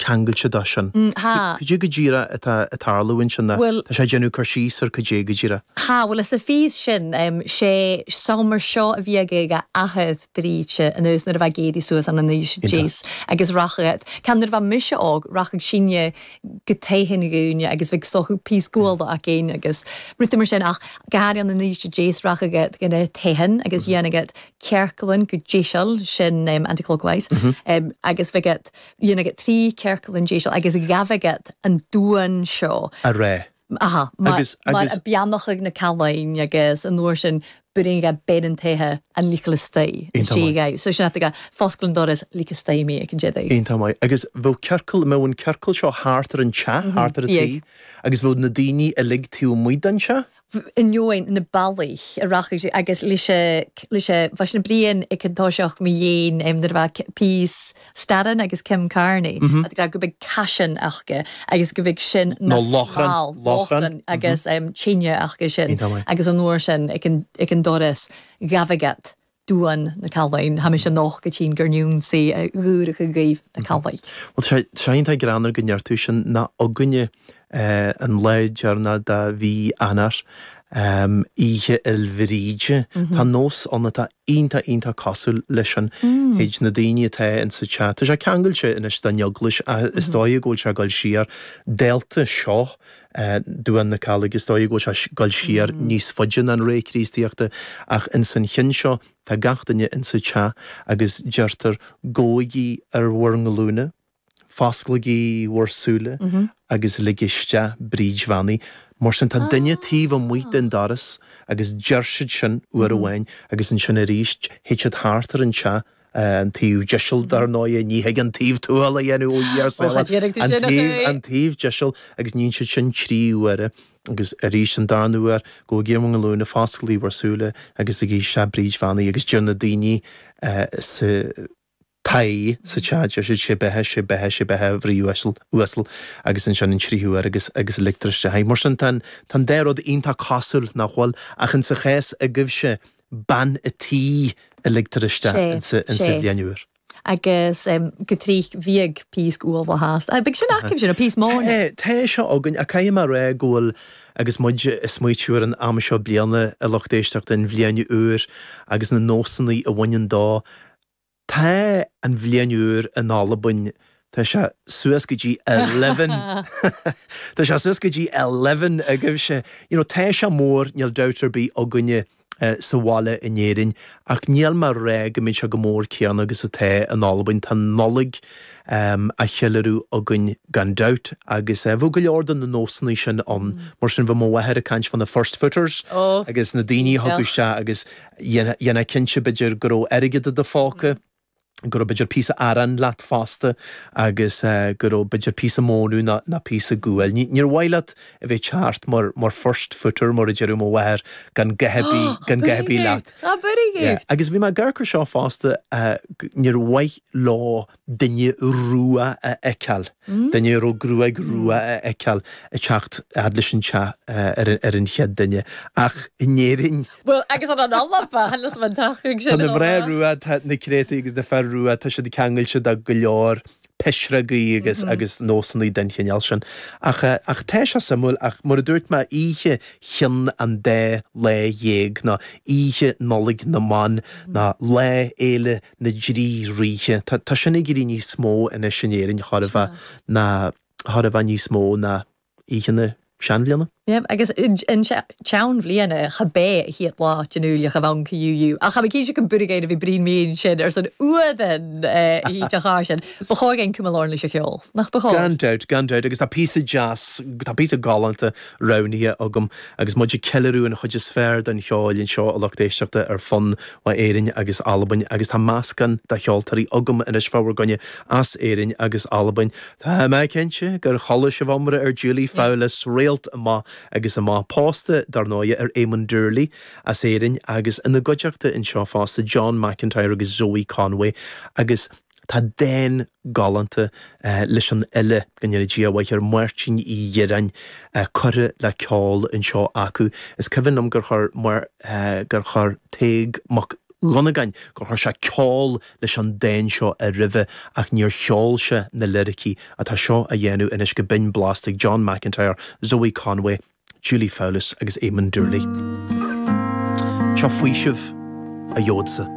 ceangailte dó sin. Cad é go díreach atá ag tarlú ansin? Tá sé ag déanamh cur síos ar cad é go díreach. Tá, bhuel, sa phíos sin, sé seomra seo a bhí ag a athair, Bríd, anuas nuair a bheadh Géadaí suas ann in aois, jeez, agus rachadh, ceann nuair a bheadh mise óg, rachadh sinne go tigh an ghúine agus bheadh stoca, píos guail againn agus rudaí mar sin ach gach aon in aois, jeez, rachadh ina teitheadh agus dhéanfadh ciorcal ann go deiseal, sin anti-clockwise, agus bheadh. Dhéanadh iad trí ciorcalan deiseal agus ghabhadh iad an duan seo a rá. Aha, mar a beannachadh na Callainn agus an uair sin beireann gá bean an tighe an ligean istigh gá. So sin ata gá, fosgail an doras, lig istigh mé ag an deireadh. Iontach maith. Agus bheadh ciorcal, mbeadh an ciorcal seo thart ar an teach, thart ar an tigh agus bheadh na daoine uilig taobh amuigh den teach? ainneoin na balaich a rachaidh sé agus leis an bhfaisean. Brian ag an toiseach mo dhéin nuair a peace stadann agus Kim Carney ag rá go mbíodh caisean acu agus go mbíodh sin na Lochlann Lochlann agus tine acu sin agus an uair sin ag an ag an doras ghabhadh iad Duan na Callainn. Tá mise anocht a' tighinn gur n-ionnsaigh a dh'ùrachadh dhuibh na Callainn. Bhuel, tá sé iontach greannmhar go ndeir tú sin nó againne an lá deireanach de mhí Eanáir, Oíche Fhéile Bríde. Tá nós ann atá iontach iontach cosúil leis sin. Théid na daoine atá in sa teach, tá sé ceangailte anois den Eaglais ach is dóigh go bhfuil sé ag dul siar dálta seo Duan na Callaige. Is dóigh go bhfuil sé ag goil siar níos faide ná an ré Críostaíochta, ach ins an chionn seo tá gach duine ins an teach agus deirtear gabhaigí ar bhur nglúine, fosclaigí bhur súile agus lig isteach Bríd Bheannaithe. Mar sin tá duine taobh amuigh den doras agus deir siad sin uair amháin agus ansin aríst théid siad thart ar an teach, an taobh deiseal, dar ndóigh, ní thig an taobh tuathail a dhéanamh ó Dhia ár sábháil, ó, cha déanfaidh tú an sin, a taobh, Ghracie. an taobh deiseal, agus níonn siad sin trí huaire, agus arís an darna uair, gabhaigí ar bhur nglúine, fosclaigí bhur súile agus ligigí isteach Bríd Bheannaithe, agus deir na daoine sa toigh, sa teach, deir siad sé beatha, sé beatha, sé beatha, a Bhríd uasal, uasal, agus ansin an tríú huair agus, agus ligtear isteach í. Mar sin, tá an, tá an dá rud iontach cosúil, nach bhfuil? Ach insa chás agaibhse, bean a' tí a ligtear isteach ins a' bhliain úr. agus go tric bhíodh píos guail acu a's a' bheadh sin acu sin, píos móna. Tá seo againn, ach caithfidh mé a rá go bhfuil, agus muid a' smaoitiú ar an am seo bliana, a lucht éisteachta, an bhliain úr agus na nósannaí a bhaineann dó, Tá an bhliain úr in Albain, tá sé suas go dtí eleven, tá sé suas go dtí eleven agaibhse, you know, tá sé mór, níl dabht ar bith againne sa bhaile in Éirinn ach níl mé ag rá go mbíonn sé chomh mór céanna agus atá in Albain, tá an Nollaig á cheiliúradh againn gan dabht agus bheadh go leor de na nósanna sin ann, mar sin bheadh mo mháthair ag caint fá na first footers agus na daoine a thigeadh isteach agus. Dhéanfá cinnte, b'fhéidir, go raibh airgead i do phóca, go raibh, b'fhéidir, píosa aráin leat fosta agus go raibh, b'fhéidir, píosa mónadh nó píosa guail. Níor mhaith leat a bheith ag teacht mar first footer, mar a deireadh mo mháthair, gan a dhath ar bith, gan a dhath ar bith leat. Á, very good! Agus bhí mé ag amharc ar seo fosta, níor mhaith leo. duine rua a fheiceáil, duine a raibh gruaig rua a fheiceáil ag teacht fhad leis an teach mar an chéad duine. Ach in Éirinn. Bhuel, agus ann an Alba, tháinig san amach sin chomh maith. Tá na mná rua, tá na créatúir agus na fir rua, tá siad ceangailte do go leor pisreogaí agus agus nósanna den chineál sin. Ach ach tá sé suimiúil ach mar a dúirt mé, oíche chinn an dá lá dhéag, nó oíche Nollaig na mBan, nó Lá Fhéile na dtrí Ríthe. Tá sin ag éirí níos mó anois in Éirinn chóir a bheith nó chóir a bheith níos mó ná Oíche na Seanbhliana. Yep agus an tSeanbhliana gum b' e a' chiad là den Iuchar a bh' ann cu yú yú ach chan cinn seo go Búirigéid a bhí Brian Mín sin airson a h-uile bhean a dh'fhuirich air sin. Bu chòir dhuinn cumail oirnn leis a' cheòl, nach bu chòir? Gan dabht, gan dabht agus tá píosa deas, tá píosa galánta roghnaithe agam agus muid ag ceiliúradh an chuid is fearr den cheol anseo a lucht éisteachta ar fonn maith, Éirinn agus Albain agus tá meascán de cheoltóirí agam anois fá bhur gcoinne as Éirinn agus Albain. Tá mé cinnte gur chuala sibh iomrá ar Julie Fowlis, réalt amach agus amach, pósta, dár ndóighe, ar Éamon Doorley as Éirinn agus ina gcuideachta anseo fosta John McIntyre agus Zoë Conway agus tá dán galánta leis an fhile, go ndéana Dia a mhaith air, Máirtín Ó Direáin, curtha le ceol anseo acu. Is cuimhin liom gur chuir mar gur chuir Tadhg Mac Dhonnagáin gur chuir sé ceol leis an dán seo aroimhe ach níor cheol sé na liricí atá seo á dhéanamh anois go binn blasta ag John McIntyre, Zoë Conway, Julie Fowlis agus Éamon Doorley. Seo faoiseamh a gheobhadsa.